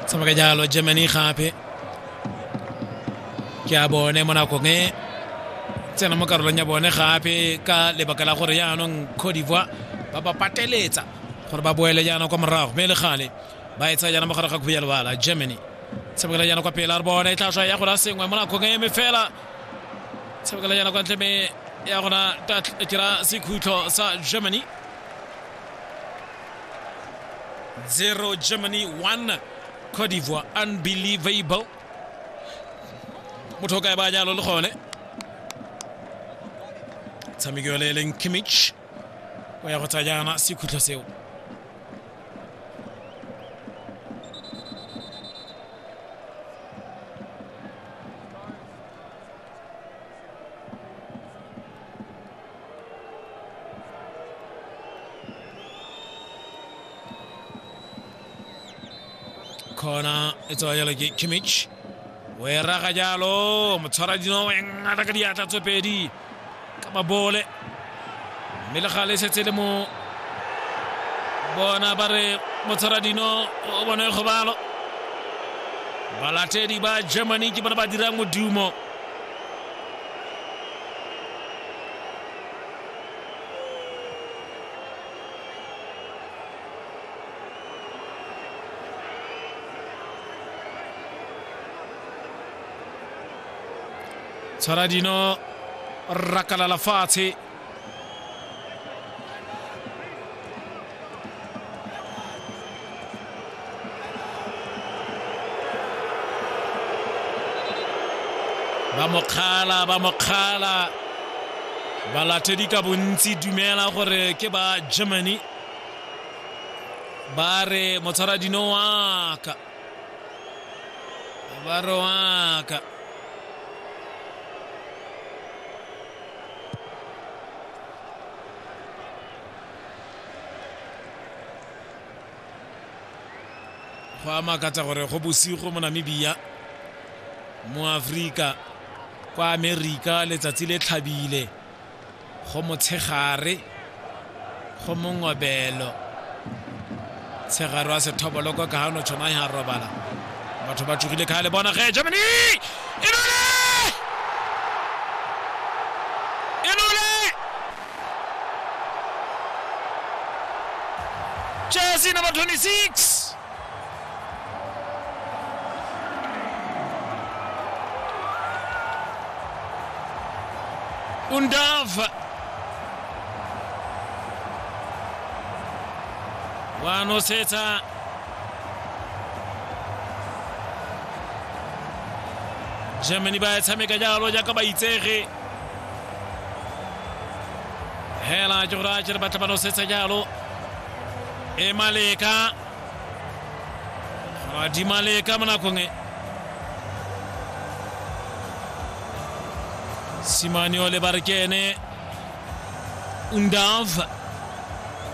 sama ga jalo jemeni khape ke a bone mo nakong e tsena mo karolong ya bone gape ka lebaka la gore yaanong cote d'ivoire ba ba pateletsa gore ba boele jaana kwa morago mme e le gale ba e tsaya jaana mo gare ga khuya lebala germany tshabekela jaana kwa pele a re bone e tlhatlhwa ya gona sengwe mo nakong e eme fela tshabekela jaana kwa ntle me ya gona kira sekhutlho sa germany 0 germany 1 cote d'ivoire unbelievable motho o kae ba jalo le gone tshameki yole e leng kimich o ya go tsa jaana sekhutlho seo khona e tsewa jalo ke kimmich o e raga jalo motshwara dino e ngata ka diatla tse pedi ka mabole mme le gale setse le mo bona ba re motshwara dino o bone kgobalo balatedi ba germany ke bone ba dirang modumo tshwara dino rakalala fatshe ba mokgala ba mokgala balatedi ka bontsi dumela gore ke ba germany ba re motshwaradino waka ba re waka go a makatsa gore go bosigo mo namibia mo afrika kwa amerika letsatsi le tlhabile go motshegare go mongobelo Tshegare wa sethoboloko ka gano tshonai ga robala batho ba tsogile kgale bona ge germany inole inole jersey number 26 Undav wanosetsa germany ba tshameka jalo jaaka ba itsege hela ke gore a kere batla ba nosetsa jalo e maleka madi maleka mo nakong e simaniole ba re ke ene undav